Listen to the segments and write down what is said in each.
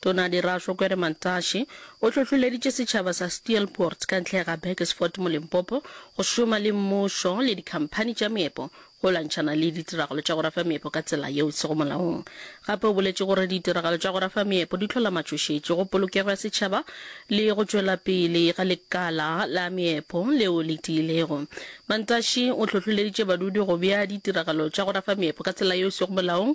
Tona Dirašo Kwere Mantashe o hlohloleditše setšhaba sa Steelpoort ka ntle ga Burgersfort mo Limpopo go šoma le mmušo le dikhamphani tša meepo go lwantšhana le ditiragalo tša go rafa meepo ka tsela yeo e sego molaong. Gape o boletše gore ditiragalo tša go rafa meepo di hlola matšhošetši go polokego ya setšhaba le go tšwela pele ga lekala la meepo leo le tiilego. Mantashe o hlohloleditše badudi go bea ditiragalo tša go rafa meepo ka tsela yeo e sego molaong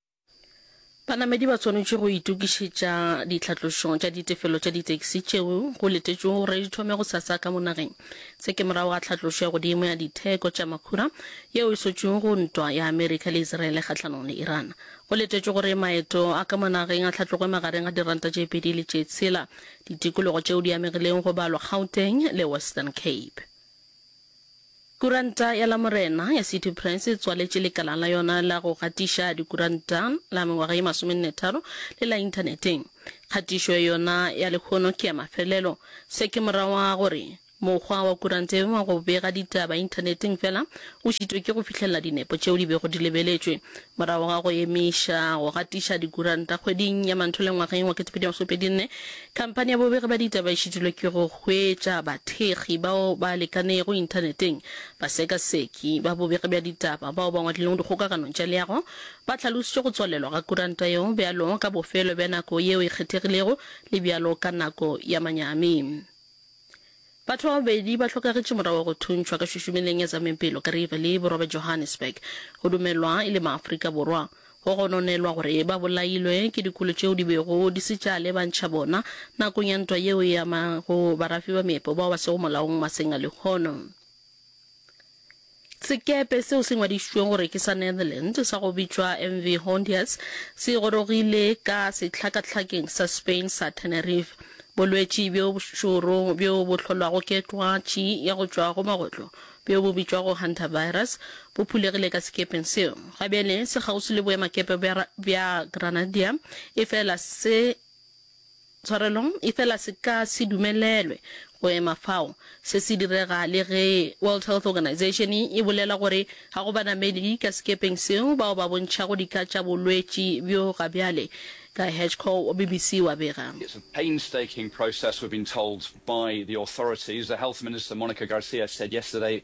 Banamedi ba swanetše go itokišetša ditlhatlošo tša ditefelo tša ditaxi tšeo go letetšwego gore di thome gosasa ka mo nageng. Se ke morago ga tlhatlošo ya godimo ya ditheko tša makhura yeo e sotšwego go ntwa ya Amerika le Iseraele kgahlanong le Iran. Go letetšwe gore maeto a ka mo nageng a tlhatlogwe magareng ga diranta tše pedi le tše tshela ditikologo tšeo di amegilego go balwa Gauteng le Western Cape. Kuranta ya Lamorena ya City Press e tswaletše lekala la yona la go gatiša dikuranta la mengwaga ye masomennetharo le la Inthaneteng. Kgatišo ya yona ya lehono ke ya mafelelo. Se ke morago ga gore mokgwa wa kuranta ye wa go bega ditaba Inthaneteng fela o šitwe ke go fihlelela dinepo tšeo di bego di lebeletšwe Morago ga go emiša go gatiša dikuranta kgweding ya Manthola ngwageng wa 2024, khamphani ya bobegi ba ditaba e šitilwe ke go hwetša bathekgi bao ba lekanego inthaneteng, basekaseki ba bobegi bja ditaba bao ba ngwadilego dikgokaganong tša leago ba hlalošitše go tswalelwa ga kuranta yeo bjalo ka bofelo bja nako yeo e kgethegilego le bjalo ka nako ya manyami. Batho ba babedi ba hlokagetše morago ga go thuntšhwa ka šušumeleng ya zamepelo ka Riverlea, Borwa bja Johannesburg. Go dumelwa e le Maafrika Borwa. Go gononelwa gore ba bolailwe ke dikolo tšeo di bego di se tša lebantšha bona nakong ya ntwa yeo e amago barafi ba meepo bao ba sego molaong maseng a lehono. Sekepe seo se ngwadišitšwego gore ke sa Netherlands sa go bitšwa MV Hondias se gorogile ka sehlakahlakeng sa Spain sa Tenerife. Bolwetši bjo bošoro bjo bo hlolwago ke twatši ya go tšwa go magotlo bjo bo bitšwago hantavirus bo phulegile ka sekepeng seo. Gabjale se kgauswi le boemakepe bja Granadilla efela se Tshwarelo, efela se ka se dumelelwe go ema fao. Se se direga le ge World Health Organization e bolela gore ga go banamedi ka sekepeng seo bao ba bontšhago dika tša bolwetši bjo ga bjale. Guy Hedgecoe wa BBC o a bega. It's a painstaking process, we've been told by the authorities. The Health Minister, Monica Garcia, said yesterday.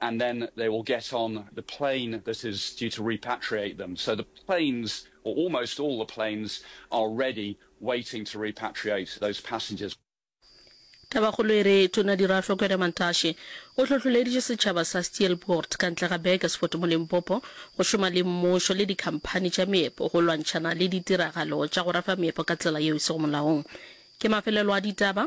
and then they will get on the plane that is due to repatriate them. So the planes, or almost all the planes, are ready, waiting to repatriate those passengers. Tabakgolo e re Tona Dirahlwa Kwena-Mantashe o hlohloleditše setšhaba sa Steelpoort ka ntle ga Burgersfort mo Limpopo go šoma le mmušo le dikhamphani tša meepo go lwantšhana le ditiragalo tša go rafa meepo ka tsela yeo e sego molaong. Ke mafelelo a ditaba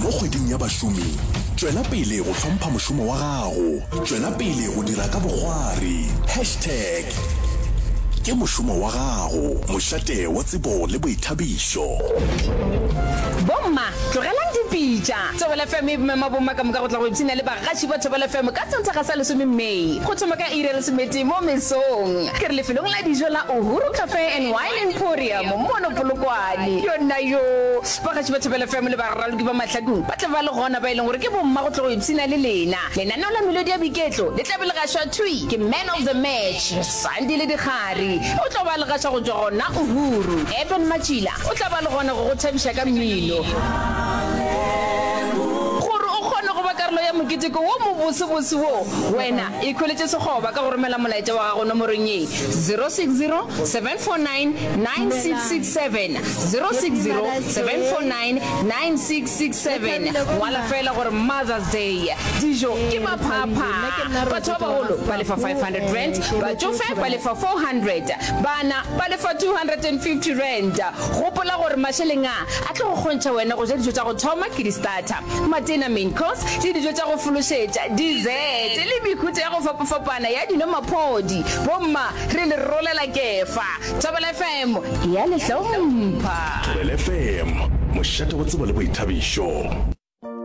Mo Kgweding ya Bašomi, tšwela pele go hlompha mošomo wa gago. Tšwela pele go dira ka bokgwari. Hashtag Ke mošomo wa gago, mošate wa tsebo le boithabišo. Bomma, tlogelang dipitša! Thobela FM e mema bomma ka moka go tla go ipshina le bagaši ba Thobela FM ka Sontaga sa lesome May, go thoma ka iri ya lesometee mo mesong. Ke re lefelong la dijo la Uhuru Cafe and Wine Emporium mono Polokwane. Yona yoo! Bagaši ba Thapelo FM le baraloki ba Mahlakong ba tla ba le gona ba e leng gore ke bomma go tlo go ipshina le lena. Lenaneo la Melodi ya Boiketlo le tla be le gašwa thwi ke Man of the Match, Sandile Dikgari. O tlo ba le gaša go tšwa gona Uhuru. Eben Matšila o tla ba le gona go go thabiša ka mmino. Gore o kgone go ba karolo ya moketeko wo mobosebose wo, wena ikhweletše sekgoba ka go romela molaetša wa gago nomorong ye, 060 749 9667. 060 749 9667 ngwala fela gore mothers day dijo ke maphapha batho ba bagolo ba lefa 500 rand batšofe ba lefa 400 bana ba lefa 250 rand gopola gore mašeleng a a tlo go kgontšha wena go ja dijo tša go thoma ke di-starter matena main course le dijo tša go fološetša dessert le mehuta ya go fapafapana ya dino maphodi bomma re le rolela kefa Thobela FM ya le hlompha. Thobela FM, mošate wa tsebo le boithabišo.